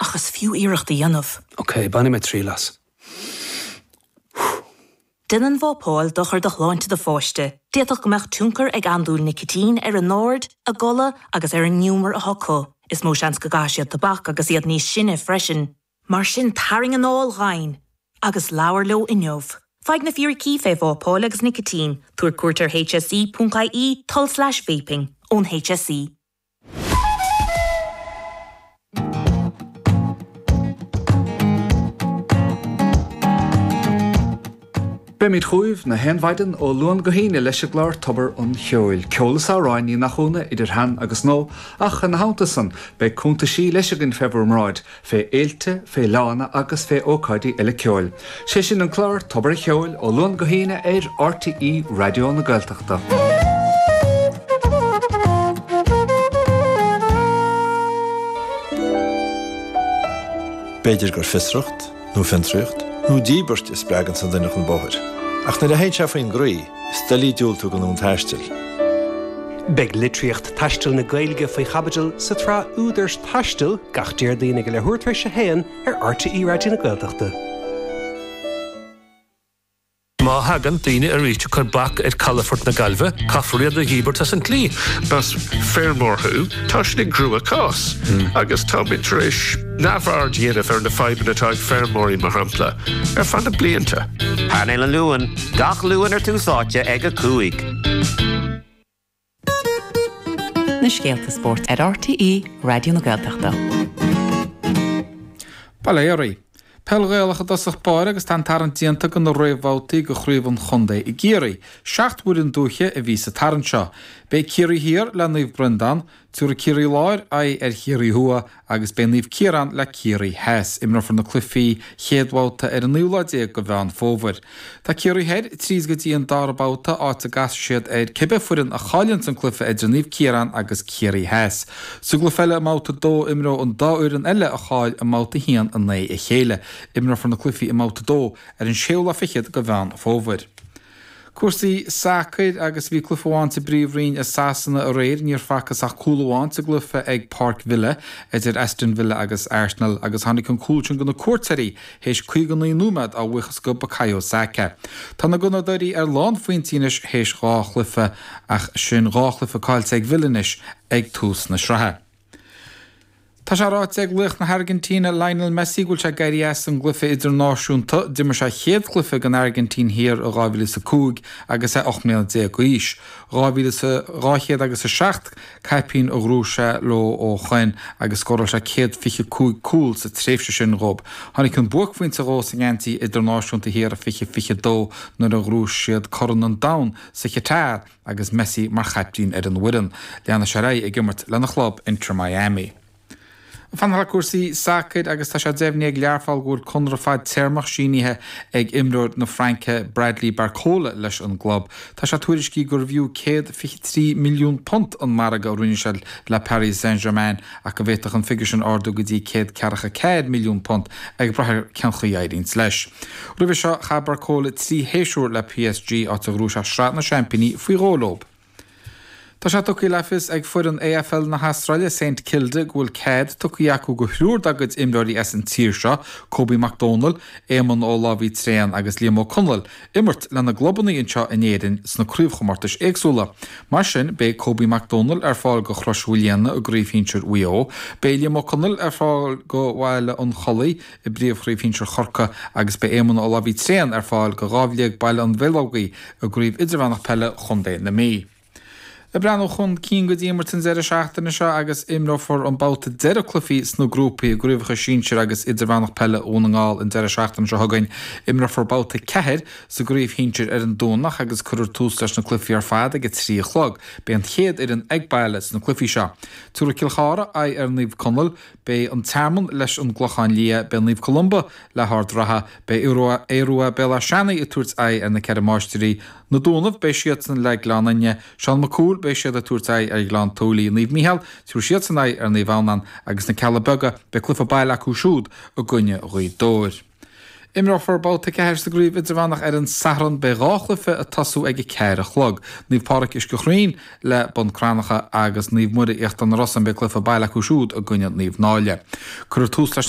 Ach is fiú iarracht a dhéanamh. OK, bainfidh mé triail as. Déanann vápáil dochar do shláinte do pháiste. D'fhéadfadh go mbeadh tionchar ag andúil nicitín ar a n-aird, a gcodladh agus ar an ngiúmar atá acu. Is mó seans go gcaithfidh siad tobac agus iad níos sine freisin. Mar sin tarraing anáil dhomhain agus labhair leo inniu. Faigh na fíricí faoi vápáil agus nicitín, tabhair cuairt ar hse.ie, tulslais vaping, ón hse. Beimid chugaibh gach aon mhaidin ó Luan go hAoine leis an gclár Tobar an Cheoil, ceol is amhráin, ní nach ionadh, idir shean agus nua, ach ina theannta san beidh cuntaisí leis againn fé bhur mbráid, fé fhéilte, fé fhleánna agus fé ócáidí eile ceoil. Sé sin an clár Tobar an Cheoil ó Luan go hAoine ar RTÉ Raidió na Gaeltachta. B'fhéidir gur fiosracht, nó fiontraíocht, nó díbirt a spreagann an duine chun bóthair. Ach nuair a théann sé faoin gcroí, Is doiligh diúltú don fhonn taistil. Beidh litríocht taistil na Gaeilge faoi chaibidil sa tsraith Údair Taistil gach Déardaoin ag a leathuair tar éis a haon ar RTÉ Raidió na Gaeltachta. Má thagann daoine arís ag cur bac ar calafort na Gaillimhe, caithfear iad a dhíbirt as an tslí. Is feirmeoir thú, tá sibh i gcruachás agus táimid tar éis. neamhaird a dhéanamh ar na fadhbanna atá ag feirmeoirí, mar shampla, ar feadh na blianta. Painéal an Luain, gach Luan ar Tús Áite ag a cúig. Na scéalta spóirt ar RTÉ Raidió na Gaeltachta. Bail ó Dhia oraibh. Peil Ghaelach i dtosach báire agus tá an tarraingt déanta do na réamhbhabhtaí do Chraobh an Chontae i gCiarraí. Seacht bhfoireann dúiche a bhí sa tarraingt seo. Beidh Ciarraí Thiar le Naomh Breandán, Tabharfaidh Ciarraí Láir aghaidh ar Chiarraí Thuaidh agus beidh Naomh Ciarán le Ciarraí Theas. Imreofar na cluichí chéad bhabhta ar an naoú lá déag de Mheán Fómhair. Tá Ciarraí Thoir tríd go dtí an dara babhta, áit a gcasfaidh siad ar cibé foireann a chailleanns an cluiche idir Naomh Ciarán agus Ciarraí Theas. Sa gcluiche eile i mbabhta a dó imreoidh an dá fhoireann eile a chaill i mbabhta a haon in aghaidh a chéile. Imreofar na cluichí i mbabhta a dó ar an séú lá fichead de Mheán Fómhair. Cúrsaí sacair, Agus bhí cluiche amháin sa bPríomhroinn i Sasana aréir, níor facthas ach cúl amháin sa gcluiche ag Páirc Villa idir Aston Villa agus Arsenal agus tháinig an cúl sin do na cuairteoirí théis 59 nóiméad a bhuíochas do Bakayo Saka. Tá na Gunnadóirí ar lán phointí anois théis dhá chluiche ach sin dhá chluiche caillte ag Villa anois ag tús na sraithe. Tá sé ráite ag laoch na hAirgintíne Lionel Messi go bhfuil sé ag éirí as an gcluiche idirnáisiúnta. D'imir sé a chéad chluiche don Airgintín thiar i 2005 agus é ocht mbliana déag d'aois. Dhá mhíle is a dhá chéad agus a seacht caipín a ghnóthaigh sé leo ó shoin agus scóráil sé céad fiche cúig cúl sa tréimhse sin dhób. Tháinig an buaicphointe dhó sa ngeansaí idirnáisiúnta thiar i fiche fiche dó nuair a ghnóthaigh siad Corn an Domhain sa Chatar. Agus Messi mar chaiptín ar an bhfoireann, leanfaidh sé ar aghaidh ag imirt lena chlub, Inter Miami. Ag fanacht le cúrsaí sacair agus tá sé deimhnithe ag Learpholl go bhfuil conradh fadtéarmach sínithe ag imreoir na Fraince, Bradley Barcola, leis an gclub. Tá sé tuairiscithe gurbh fhiú £123 milliún an margadh a rinne sé le Paris Saint-Germain ach go bhféadfadh an figiúr sin ardú go dtí £140 milliún ag brath ar cén chaoi a éiríonns leis. Roimhe seo chaith Barcola trí shéisiúr le PSG, áit a ghnóthaigh sé Sraith na Seaimpíní faoi dhó leo. Tá sé tugtha le fios ag foireann AFL na hAstráile, Saint Kilda, go bhfuil cead tugtha acu go thriúr dá gcuid imreoirí as an tír seo, Kobe Mac Domhnaill, Éamonn Ó Láimhaigh Tréan agus Liam Ó Conaill, imirt lena gclubanna anseo in Éirinn sna craobhchomórtais éagsúla. Mar sin, beidh Kobe Mac Domhnaill ar fáil go Chrois Mhaoilíona i gcraobh shinsir Mhaigh Eo, beidh Liam Ó Conaill ar fáil go Bhaile an Chollaigh, i bPríomhchraobh Shinsir Chorcaí agus beidh Éamonn Ó Laimhí tréan ar fáil go Dhamhliag Baile an Bheileogaigh i gCraobh Idirmheánach Peile Chontae na Mí. Ag breathnú chun cinn go dtí imirt an deireadh seachtaine seo agus imreofar an babhta deireadh cluichí sna grúpaí i gCraobhacha Sinsir agus Idirmheánach Peile Dhún na nGall an deireadh seachtaine seo chugainn. Imreofar babhta 4 sa gcraobh shinsir ar an Domhnach agus cuirfear tús leis na cluichí ar fad ag a trí a chlog. Beidh an chéad fhoireann ag baile sna cluichí seo. Tabharfaidh Cill Chartha aghaidh ar Naomh Conaill. Beidh An Tearmann leis an gClochán Liath, beidh Naomh Columba le hArd an Rátha, beidh Aodh Ruadh, Béal Átha Seanaidh ag tabhairt aghaidh ar na Ceithre Máistirí, Na Dúnaibh, beidh siadsan le Gleann Fhinne, Seán Mac Cumhaill, beidh siad ag tabhairt aghaidh ar Ghleann tSúilí, Naomh Mícheál, tabharfaidh siadsan aghaidh ar Naomh Adhamhnán agus na Cealla Beaga, beidh cluiche baile acu siúd i gcoinne Ghaoth Dobhair. Imreofar babhta a ceathair sa gcraobh idirmheánach ar an Satharn. Beidh dhá chluiche ag tosú ag a ceathair a chlog. Naomh Pádraic Uisce Chaoin le Bun Cranncha agus Naomh Muire Íochtar na Rosann beidh cluiche baile acu siúd i gcoinne Naomh Náille. Cuirfear tús leis na.